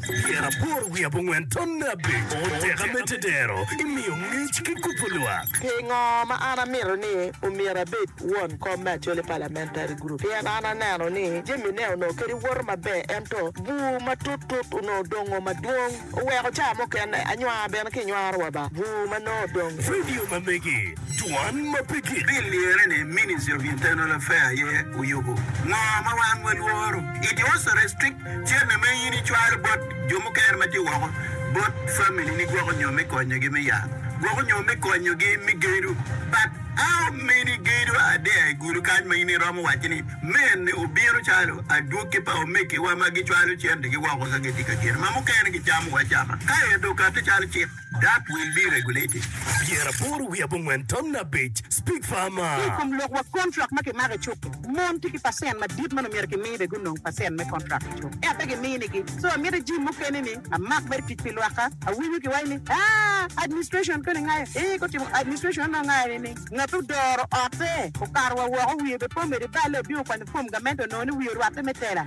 Tyen aboro wiye abongwen tonne abiro, teka me tedero imiyo ngec ki kubo lwak. Pingo ma an amito ni omyero abed won kom me Acholi Parliamentary Group? Pien an aneno ni jamine onongo kadi woto maber ento bur matut tut onongo dongo madwong oweko ca mukene anywar bene kinywaro wa ba bur ma nongo odong. Radio ma megi, Dwan ma pe gik. Bill liyere ni Ministry of Internal Affair aye oyubo ngo ma wan walworo. It was a restricted. Cente ma in icwalo bot jo mukene ma tye woko bot familini gwoko nyo me konyogi me yat, gwoko nyo me konyogi me gedo. But how many gedo are there i gulu kany ma in iromo waco ni mene obino calo adwogi pa omegiwa ma gicwalo centegi woko ka gitye ka gedo ma mukene gicamo acama kaeto okati calo cik? Dak will be regulated. Pyera aboro wiye abongwen tamna abic, Speak farmer. Ki i kom lok wa kontrak ma kimako i cuk-ki, mon tye ki pacent madit ma nongo myero kimi bene gunong pacent me kontrak i cuk, ento pe giminigi. So amito jim mukene ni amak mere tic pi lwakka. Awinyo kiwaco ni, Aah, administration koni ngayo? Ee, gutimo administration anongo ngayo ni ni ngat ma odoro otte okato wa woko wiye bepomede balle obino kwanyo form gamente onongo ni wiye orwatte me tela.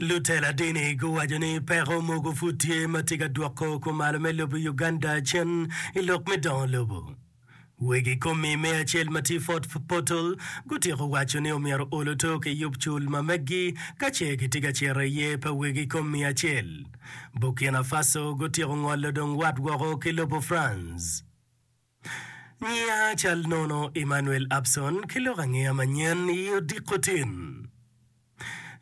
Lutela dini guwaco ni peko mogo pud tye ma tye ka dwoko kumalo me lobo Uganda cen i lok me dongo lobo. Wegi komi me acel ma tye Fort Portal gutyeko waco ni omyero oluto ki yub cul ma meggi ka ce kitye ka cito i ye pa wegi komi acel. Burkina Faso gutyeko ngolo dong wat woko ki lobo France. Ngiya cal nono Emmanuel Abson ki lok angeya manyen i odiko tin.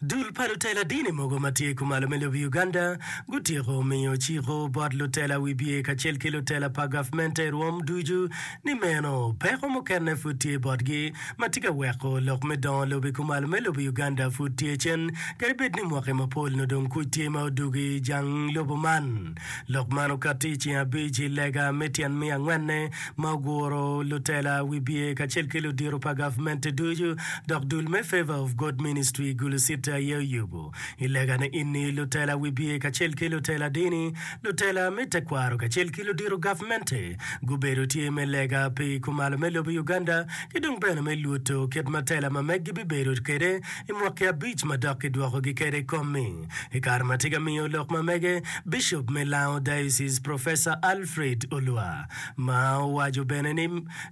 Dul pa lutela dini mogo ma tye kumalo me lobo Uganda gutyeko miyo ciko bot lutela wibye kacel ki lutela pa gavmente i rwom ducu ni meno peko mukene pud tye botgi ma tye ka weko lok me dongo lobo i kumalo me lobo Uganda pud tye cen kadi bed ni mwaki mapol nodong kuc tye ma odugo i jang lobo man. Lok man okatti i ceng abic i lega me tyen miya angwenne ma oguro lutela, wibye, kacel ki ludito pa gavmente ducu, dok dul me Favour of God Ministry i Gulu City aye oyubo. I lega-ni eni, lutela wibye kacel ki lutela dini, lutela me tekwaro kacel ki ludito gavmente gubedo tye me lega pi kumalo me lobo Uganda ki dong bene me lwoto kit ma tela ma meggi bibedo kwede i mwaki abic ma dok kidwokogi kwede i kom-mi. I kare ma tye ka miyo lok ma mege, Bicop me Lango Diocese Professor Alfred Olwa ma owaco bene ni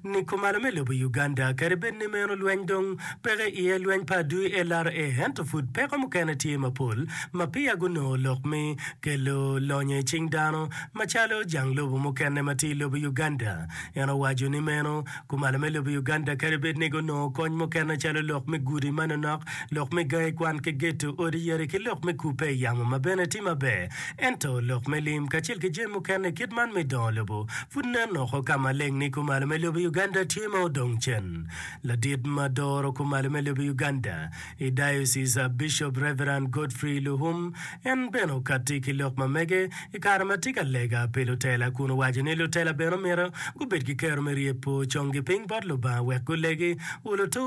nikomalo me lobo Uganda kadi bed ni meno lweny dong peke iye lweny pa DLRA ento pud peko mukene tye mapol ma peya gunongo lok mi kelo lonyo icing dano macalo jang lobo mukene ma tye ilobo Uganda. En owaco ni meno Kumalo me lobo Uganda kadi bed ni gunongo kony mukene calo lok me gudi manonok, lok me gangi kwan ki geto odi yadi ki lok me kubbe i yamo ma bene tye maber, ento lok me lim kacel ki jami mukene i kit man me dongo lobo pud nen woko ka maleng ni kumalo me lobo Uganda tye ma odong cen. Ladit ma doro kumalo me lobo Uganda I diocese a Bishop Reverend Godfrey Luhum en bene okatti ki lok ma mege i kare ma tye ka lega pi lutela kun owaco ni lutela bene omyero gubed ki kero me ryepo congi piny bot Lubanga wek gulegi.